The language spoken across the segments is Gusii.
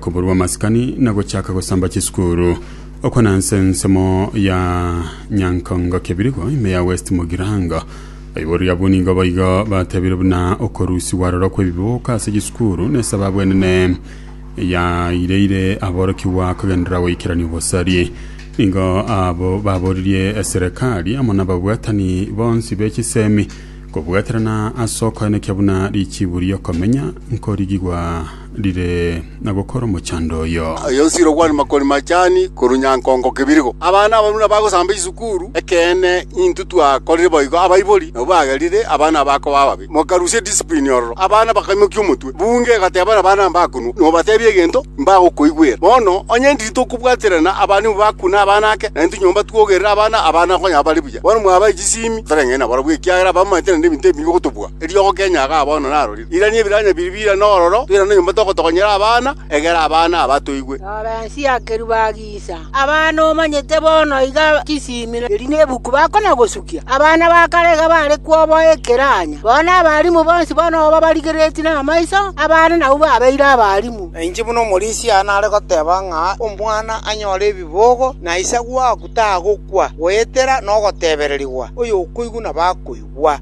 Koborwa amasikani na gochaka gosamba chisukuru. Okwo na nse ensemo ya Nyankongo Kebirigo ime ya West Mugirango. Aibori abwo nigo boigo batebire buna okorusigwa aroro kw'ebibuka ase chisukuru nesababu enene yaireire aborokigwa kogenderera goikerania obosari. Nigo abo baboririe eserekari amo nababwatani bonsi be chisemi Kobwaterana ase okoenekia buna richiibu ri'okomenya nkorigigwa rire na gokora omochando oyo. Ayosire okwana makori machani korwa nyankongo kebirigo. Abana abarwa nabagosamba isukuru, ekeene intwe twakorire boigo abaibori nabwo bagerire abana aba koba ababe. Mokarusia edisiprini ororo, abana bakaimokia omotwe. Bunge egateba nabana mbakunwa, Nobatebia egento, mbagokoigwera. Bono onye intwe titokobwaterana, abana nigo bakune abana ake, na intwe nyomba twogerere abana, abana konya bare buya. Nyasae. Bono mwabae chisiimi, totareng'ani nabarabwo, ekiagera abamanyete naende ebinto ebinge gotobua. Eriogo Kenya iga bono narorire. Irania ebiranya biria bire nororo, toirane nyomba togotogonyera abana, egera abana aba toigwe. Rora ense ya keruba agisa abana omanyete bono iga chisiimi eri nebuku bakona gosukia. Abana ba kare iga bare kwoboa ekeranya. Bono abalimu bonsi bono oba barigeretie namaiso, abana nabwo babeire abalimu. Nainche buna omorisia nare goteba ng'a omwana anyore ebibogo, na isagwo ago. tagokwa goetera nogotebererigwa, oyokoigwa nabakoigwa.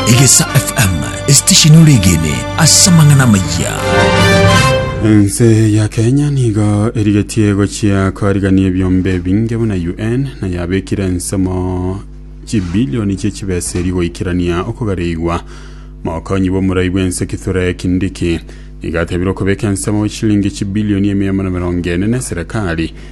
Egesa FM, esitesheni ore egene ase amang'ana amayia. Ense ya Kenya nigo erigetie gochia korigania ebiombe ebinge buna UN na yabekire ensemo chibilioni chie chibesa eri goikerania okogareigwa mokonyi bw'omorai bw'ense Kithure Kindiki nigo atebire okobeka ensemo chilingi chibilioni emia amo na mirongo ene na eserekari